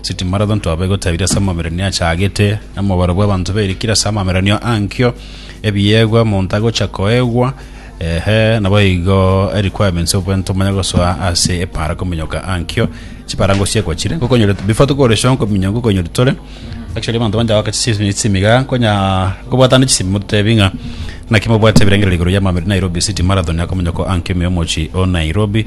City Marathon twaba egotabiri ase amabererio achagete na mobaro bw'abanto bairikire ase amabererio ankio, ebiegwa monto agocha koegwa, ehe, naboigo requirements obwento omanye gosoa ase epara kominyoka ankio, chipara ngosiekwa chire ngokonyorete before tokore show nkominyoka ngokonyorete tore actually abanto bancha goaka chisemi chisemi iga nkonya nkobwatana chisemi mototebi ng'a naki mobwate ebirengererio igoro y'amabererio Nairobi City Marathon akominyoko ankio ime omochie o Nairobi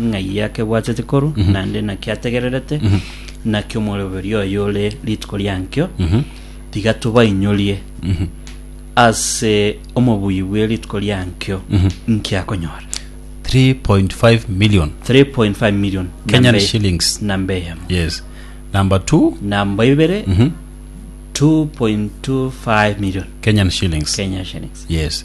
ng'ai akebwatete koru, naende naki ategererete, naki omoroberio oye ore rituko riankio, tiga tobainyorie ase omobuyi bwe rituko riankio nki akonyora. 3.5 million 3.5 million Kenyan namba e- shillings. namba eyemo yes number two namba ibere 2.25 million kenyan shillings Kenya shillings yes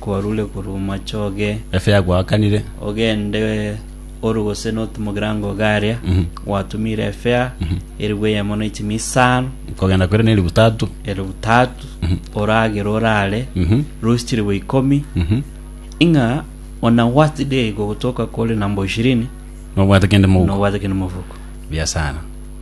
kwarure korwa omochie oge, Efe yagoakanire. ogende oru gose notu mogirango Garia, gwatumire efea eribu eyemo na echimi isano, Kogenda kwere ne eribu tatu. eribu tatu, oragere orare, Mhm. rusi chiribu ikomi, Mhm. ing'a ona what day gogotoka kore number ishirini, Nobwate kende moguko. nobwate kende mofuko. Buya sana.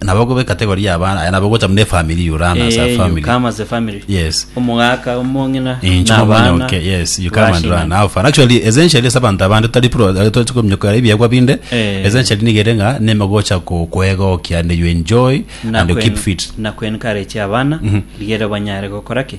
nabo gobe category ya abana aya nabo gocha mune family you run as a Eh, you family come as a family. yes Omogaka, omong'ina, incho na abana, mamonyoke yes you come and bashina. run how far actually essentially ase abanto abande tari pro tochikomnyokera ebiegwa binde Eh. essentially nigere nga neme gocha ko- koegokia and you enjoy na and you keep kwen- fit na kwencourage abana rigere banyare gokora ki